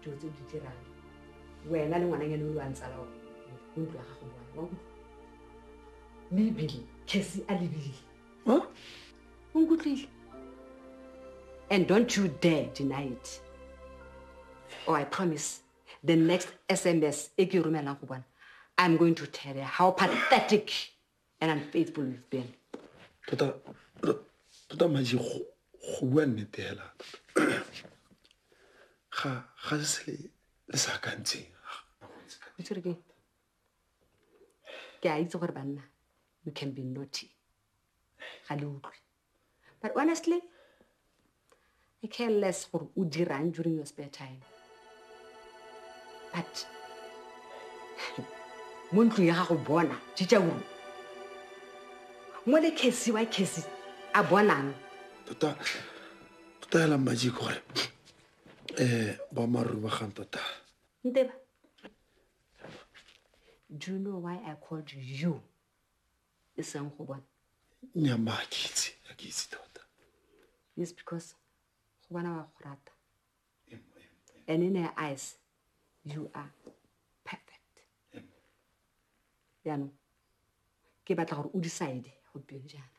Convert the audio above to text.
dilo tse di dirang wena le ngwana ngene o le wa ntsala o o ntlo ya gago bone wa nkutlwa mme ebile case a lebile o nkutlwile and don't you dare deny it or i promise the next sms e ke e romelang go bona i'm going to tell you how pathetic and i'm faithful with ben tota tota maji go bua nnete fela ga ga se le sa akantseng itsere ke ke a itse gore banna you can be naughty ga le utlwe But honestly, I care less gore o dirang during your spare time. But mo ntlong ya gago bona jija uru mo le kesi wa kesi a bonang tota tota hela mmaji gore um boammaaruri ba gang tota nteba do you know why i called you e seng go bona nyama a ke itse a ke itse tota yes because go bona wa go rata and in her eyes you are perfect yaanong ke batla gore o decide gompieno jaana